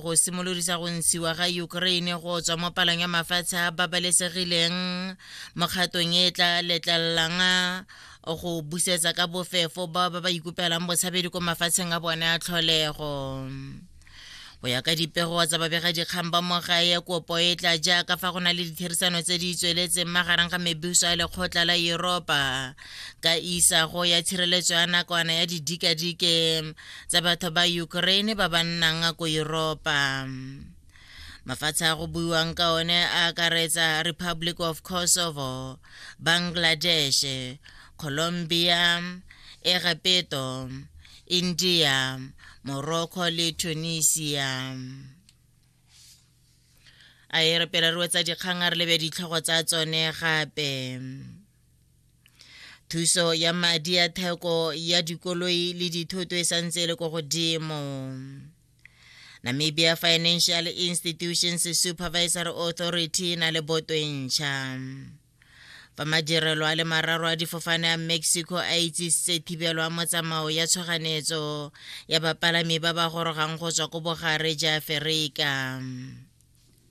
go simolodisa go ntshiwa ga ukraine go tswa mo palang ya mafatshe a babalesegileng mokgatong e tla letlelelang go busetsa ka bofefo ba ba ba ikupelang botshabedi ko mafatsheng a bone a tlholego go ya ka dipego tsa babegadikgang ba mogae kopo e tla jaaka fa go na le ditherisano tse di tsweletseng magareng ga mebuso a lekgotla la europa ka isago ya tshireletso ya nakwana ya didikadike tsa batho ba Ukraine ba ba nnang ko Europa. Mafatshe a go buiwang ka one a akaretsa Republic of Kosovo, Bangladesh, Colombia, Egepetto, India, Morocco le Tunisia. A e re pele re wetsa dikgang a re lebe ditlhogo tsa tsone gape. thuso ya madi ya theko ya dikoloi le dithoto e santse e le ko godimo namibia financial institutions supervisory authority na le boto e ntšha fa madirelo a le mararo a difofane a mexico a itsisitse thibelo a motsamao ya tshoganetso ya bapalami ba ba gorogang go tswa ko bogare ja aferika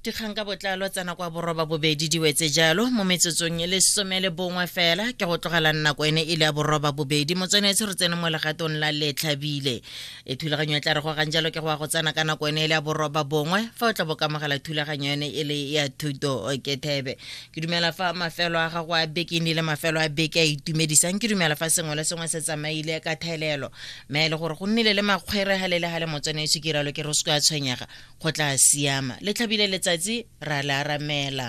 dikgang ka botlalo tsena kwa boroba bobedi di wetse jalo mo metsotsong e le some le bongwe fela ke go tlogela nako ene e le ya boroba bobedi motswenetse re tsene mo legatong la letlhabile e thulaganyo e tla re gogang jalo ke go ya go tsena ka nako ene e le ya boroba bongwe fa o tla bokamogela thulaganyo ene e le ya thuto ke thebe ke dumela fa mafelo a gago a beke ne le mafelo a beke a itumedisang ke dumela fa sengwe le sengwe se tsamaile ka thelelo mme e le gore go nnile le makgwere ga le le ga le motswenetse ke ralo ke re o se ka tshwenyega go tla siama le tlhabile letsatsi ra le aramela